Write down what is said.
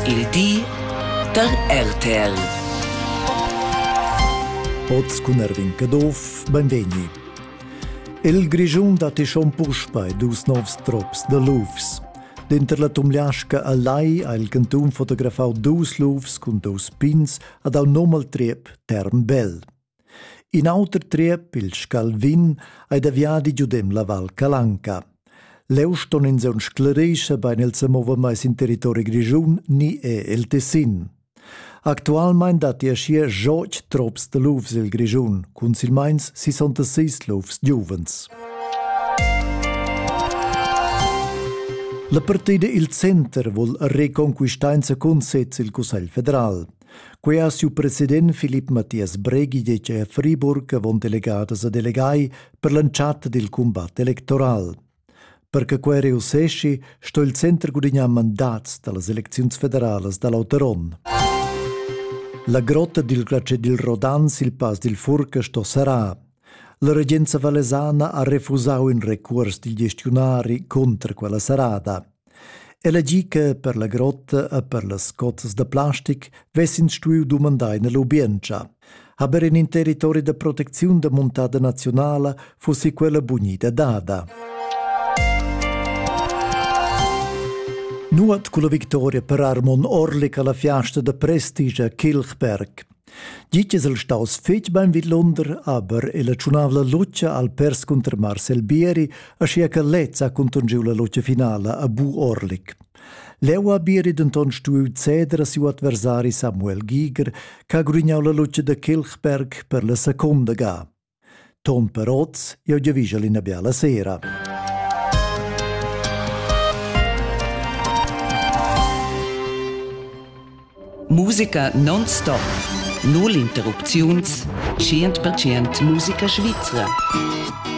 Il di da RTL. Oz cun Erwin Caduff, benvegni. Il Grischun dat schon puspei dus novs trops de lufs. Denter la Tumliasca a Lai ha il cantun fotografau dus lufs cun dus pins ad au nom al triep Term Bell. In auter triep, il Scalvin, ei da viadi giudem la Val Calanca. Leu ston ins aunc sclarescher bein el semover mai sin territori grischun ni è el Tessin. Actualmein datti aschia joc trops de lufs el Grischun, cun silmeins 66 lufs giuvens. La partida il center vul reconquistar in secund sez il Cussegl federal. Quei ha siu president Philipp Matthias Bregi detg a Friburg avon delegadas a delegai per l'entschatta dil cumbat electoral. Per che quei reusseschi, sto il center gudignar mandats dallas elecziuns federalas dall'auter onn. La grotta dil glace dil Rodan sil pass dil Furca sto serrar. La regenza valesana ha refusau in recuors dil gestiunari contra quella serrada. Ella gi che per la grotta e per las cozzas da plastic vess'ins stuiu dumandar ina lubientscha. Aber in in territori da protecziun da muntada nazionala fussi quella bunida dada. Nuot culla victoria per Armon Orlik alla fiasta da prestige a Kilchberg. Gli es el staus fetg bein vidlunder, aber el ha tschunau la lutscha al pers cunter Marcel Bieri, aschia che lez ha contungiu la lutscha finala a Bu Orlik. Leu ha Bieri denton stuiu ceder a siu adversari Samuel Giger, che ha grugnau la lutscha da Kilchberg per la secunda ga. Ton per oz, jeu giavischel ina biala sera. Musica non-stop. Null interrupziuns. 100% Musica svizra.